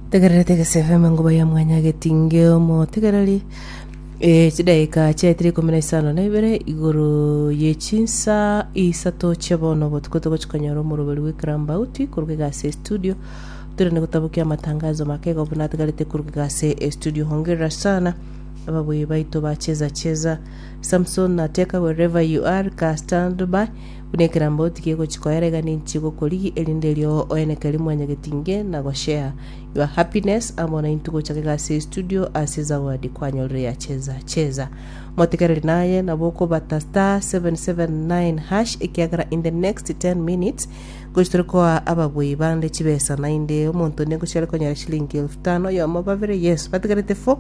Tegererete egesebe ime ngoba ya mwanyageti nge omotegereri eh, chidaika chiaetire ikomi na isano na ibere igoro ye chinsa isato chia bono botuko togochia konyora omoroberi bwe Krambauti koruga egasi ya studio tore ne gotabokia amatangazo make igo buna ategarete koruga egasi ya studio hongerera sana ababuyi baito ba cheza cheza Samson na Teka wherever you are ka stand by Buna ekerambe otige gochi koera iga ninchi gokorigi erinde erio oeneke eri mwanyagetinge na go share your happiness amo naintwe gochaka egasi ya estudio ase ezawadi kwanyorire ya cheza cheza motigereri naye nabo okobata star 779 hash ekiagera in the next 10 minutes gochi tore koa ababwei bande chibesa nainde omonto onde ngochare konyora shilingi elfu tano oyomo babere yes batigarete 4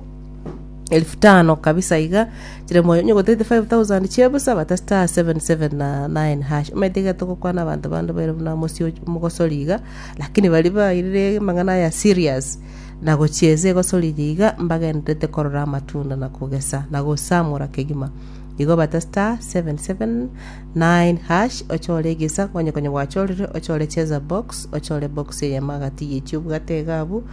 Elifu tano kabisa iga, chire moyo onye ogotete 5000 chia ebusa, bata star 77 na 9 hash. Omanyete iga togokwana abanto bande baire buna mosio mogosori iga, lakini baria bairire amang'ana aya serious, na gochiesa egosori eye iga, mbagendererete korora amatunda na kogesa na gosamura kegima. Igo bata star 77 9 hash, ochore egesa, onye konya gwachorire, ochore cheza box, ochore box eyemo agati ye chiobwate iga abwo,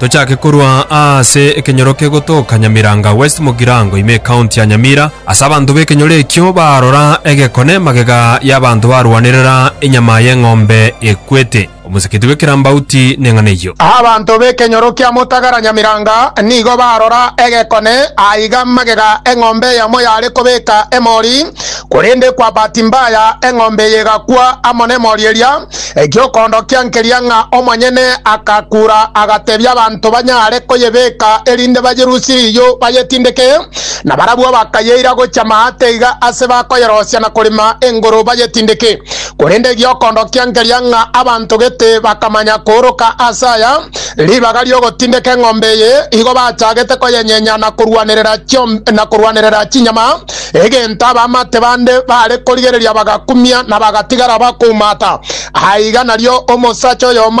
Tochake korwa aase ekenyoro kegotoka Nyamiranga West Mugirango ime County ya Nyamira, ase abanto b'ekenyoro ekio barora egekone magega y'abanto barwanerera enyama y'eng'ombe ekwete. Omosikiti bw'ekerambauti neng'ana eyio. Abanto b'ekenyoro kia Mutagara Nyamiranga nigo barora egekone aiga magega eng'ombe eyamo yare kobeka emori korende kwa bahati mbaya eng'ombe eye egakwa amo nemori eria. Egiokondokia nkeria ng'a omonyene agakura, agatebia abanto banyare koyebeka erinde bayerusie riiyo bayetindeke, na barabwo bakayeira gochia maate iga ase bakoyerosia na korema engoro bayetindeke. Korende egiokondokia nkeria ng'a abanto gete bakamanya kooroka ase aya ribaga ri'ogotindeka eng'ombe eye, igo bachagete koyenyenya na korwanerera chiom- na korwanerera chinyama, egento abamate bande bare korigereria bagakumia na bagatigara bakoumata. Aiga nario omosacha oyomo